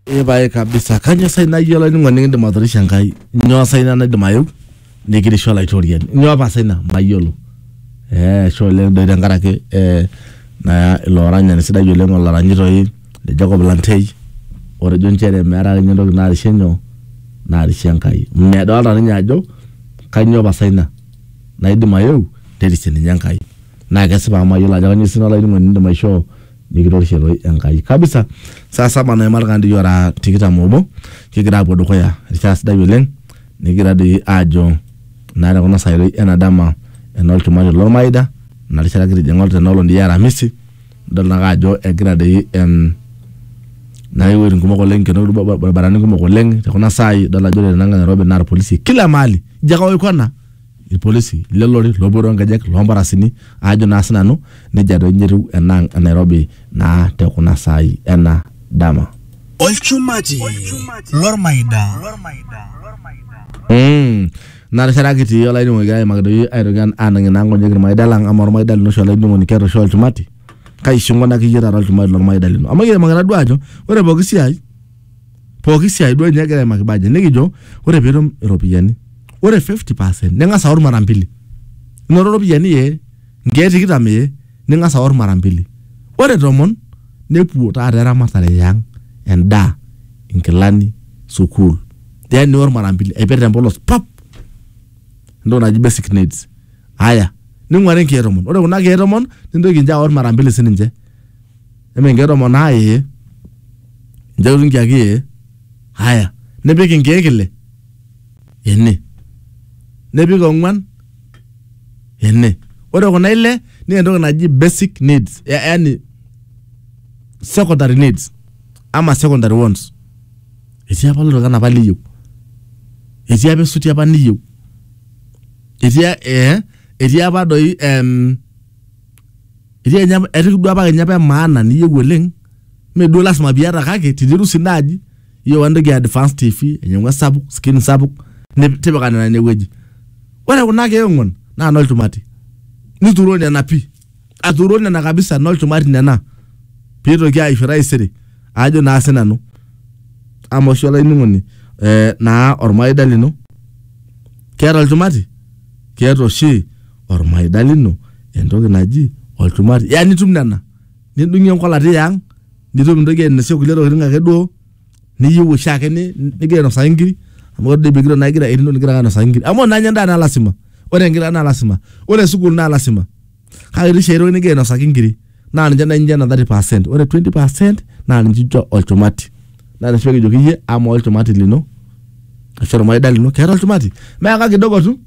epae kabisa kanyoo sai nayie olainining'oni nikindim atorishe enkai nyoo sai ina naidim ayeu nikirishu olaitoriani nyoo apa sai ina mayiolo eh ashe oleng doi tenkaraki eh naa ilo oranyani sidai oleng olaranyi toi le Jacob Lantei otejo inchere meeta akeninye entoki narishe nyoo narishe enkai medolta ninye ajo kanyoo pasa ina naidim ayeu nerishe ninye enkai naa kesipa amu mayiolo ajo kanyoo sii ina olainining'oni nindim aishoo. nikitorishie toi Enkai kabisa. Saa saba naima irkandii kiora tikitam obo kigira aapuo dukuya erishata sidai oleng nikigira doi aajo naa tekuna saai toi ena dama enolchumati lormaida ena rishata kitijing'a tena olong doi e aramisi nidol naake ajo egira doi em naa iwuejitin kumok oleng kenoto irbaribarani kumok oleng tekuna saai idol ajo ore tenankae Nairobi naa irpolisi kila mahali ijo ake aoikona. ilpolisi le lori loopuo too nkejek loo mparasini aajo naa sinanu nejia doi ninye etiu enaang e Nairobi naa te kuna saai ena dama. Olchumati lormaida. Mm. Ina rishata kitii olainining'oni kigira aimaki doi aitoki an- aanang'ie naa nkonyek ilmaida lang amaa olmaida lino oshi olainining'oni keeta oshi olchumati kai ishinkonaki iyie taata olchumati lolmaida lino amu kiimaki taduo aajo ore pooki siai pooki siai duo ninye egira aimaki budget nikijo ore piitum iropiyiani ore 50 percent ning'as aor mara mbili inoto iropiyiani ee nkeek tikitam ee ning'as aor mara mbili ore tomon nepuo taata eramatare ee ang endaa inkilani sukuul then nior mara mbili aipik tempolos pap entoki naji basic needs aya ning'uari inkeek tomon ore kuna keek tomon nintoki inche aor mara mbili sininche. Eme nkeek tomon naa ee. Nchooki nkiek ee. Haya. Nipik inkeek ile ene. Nipik ong'wan ene. Ore kuna ile naa entoki naji basic needs. Yaani secondary needs ama secondary wants. Etii apa oltung'ani apa liyieu. Etii apa esuti apa niyieu. Etii ee etii apa doi ehm etii kenya etii duo apa kenya apa emaana niyieu oleng mee duo lasima piata kake tinirusi naaji iyieu entoki e advance tv ainyiang'u esapuk skin sapuk nip- tipika nena inewueji ore kuna keek ong'uan naa nolchumati nituro nena pii aturo nena kabisa nolchumati nena piitoki aisho taisere ajo naa sinanu amaa oshi olainining'oni eh, naa ormaida lino keeta olchumati keeta oshi ormaida lino entoki naji olchumati ya nitum nena nidung'ie enkolati yang nitum nintoki ainosie kulie tokitin ake duo niyieu oshiake ni- nigira ainosaki inkiri amu ore doi pigiro naa igira etiu nigira ake ainosaki inkiri amu ore naa ninye endaa naa lasima ore enkila naa lasima ore sukuul naa lasima kake etii oshi ae toki nigira ainosaki inkiri. naa ninche nai ninche ena 30 percent ore 20 percent naa ninche incho olchumati naa ninche kijoki iyie ama olchumati lino ashu ormaida lino keeta olchumati meaka kidogo tu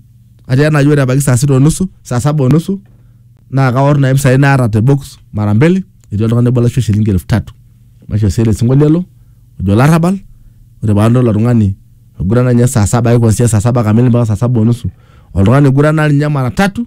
ati enaa ore ebaiki saa sita onusu saa saba onusu naa kaorr nai impisai naata te box mara mbili etii oltung'ani obo laishoo shilingi elfu tatu maishoo sii ele sinkolio elo ojo olarrabal ore paadol ilo tung'ani oigurana ninye saa saba ai kwanzia saa saba kamili mpaka saa saba onusu oltung'ani oigurana ninye mara tatu.